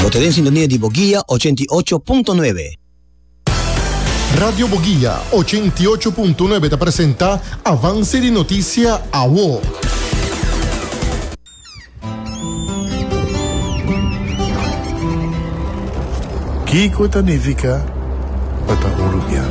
Bo ta den sintonia di Boguia ochenta i ocho punto nuebe. Radio Boguia ochenta i ocho punto nuebe ta presenta Avance di Noticia Awo. Kiko ta nifica pa ta un rubian?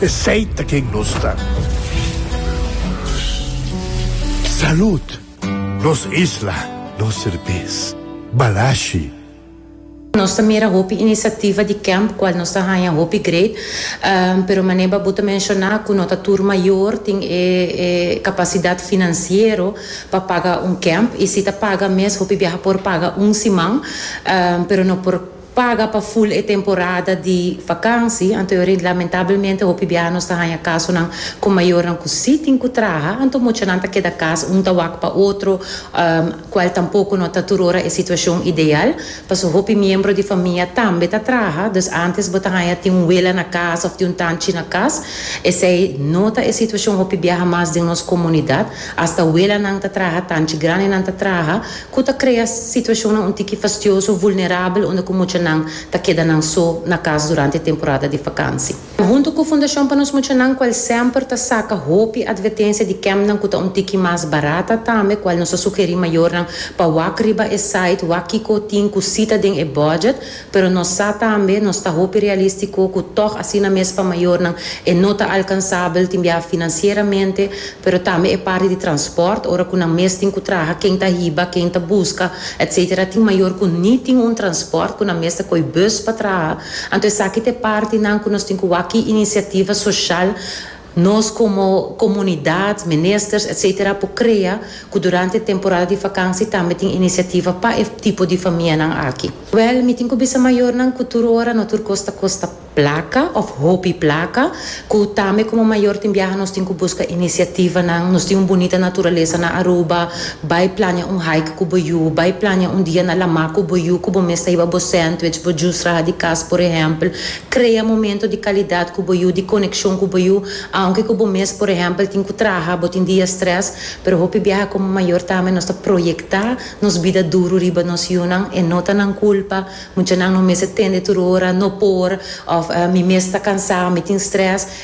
Esey ta ken nos ta. Salud! Nos isla, nos serbes. Balashi. Nos ta mira hopi inisiativa di kemp kual nos ta haña hopi great, pero manera bo ta menshoná ku no ta tur mayor tin e kapasidat finansiero pa paga un kemp, i si ta paga mes hopi biaha por paga un siman, pero no por. paga pa ful e temporada di vakansi, anto yo rindi. Lamentablemente hopi biaha nos ta haña kasonan ku mayornan ku si tin ku traha, anto muchanan ta keda kas un ta wak pa otro, kual tampoko no ta tur ora e situashon ideal, pasobra hopi miembro di famia tambe ta traha, dus antes bo ta haña tin un wela na kas òf tin un tanchi na kas, esei no ta e situashon hopi biaha mas den nos komunidat, asta welanan ta traha, tanchi grandenan ta traha. ku ta krea situashonnan un tiki fastioso, vulnerabel unda ku muchanan ta keda nan so na kas durante temporada di fakansi. Huntu ku Fundashon pa nos Muchanan ku el semper ta saka hopi advertensia di kèmpnan ku ta un tiki mas barata tambe kual nos ta sugerí mayornan pa wak riba e site wak kiko tin ku sita den e bòdjèt, Pero nos sa tambe, nos ta hopi realístiko ku tòg asina mes pa mayornan e no ta alkansabel tin biaha finansieramente, pero tambe e parti di transpòrt, ora ku nan mes tin ku traha, ken ta hiba, ken ta buska, etc. Tin mayor ku ni tin un transpòrt, ku nan mes ta koi bùs pa traha. Anto esaki ta e partinan ku nos tin ku wak ki inisiativa soshal. Nos komo komunidat, ministers etc. Por krea ku durante e temporada di vakansi tambe tin inisiativa pa e tipo di famianan aki. Wèl, mi tin ku bisa mayornan ku tur ora no tur kos ta kosta plaka òf hopi plaka, ku tambe komo mayor tin biaha nos tin ku buska inisiativanan. Nos tin un bunita naturalesa na Aruba, bai plania un hike ku bo yu, bai plania un dia na Lamá ku bo yu ku bo mes ta hiba bo sandwich, bo jus raha di kas por ehèmpel. Krea momento di kalidat ku bo yu, di konekshon ku bo yu, aunke ku bo mes por ehèmpel tin ku traha, bo tin dia strès, pero hopi biaha komo mayor tambe nos ta proyektá nos bida duru riba nos yunan, e no ta nan kulpa, muchanan no mester tende tur ora, no por, òf mi mes ta kansá, mi tin strès.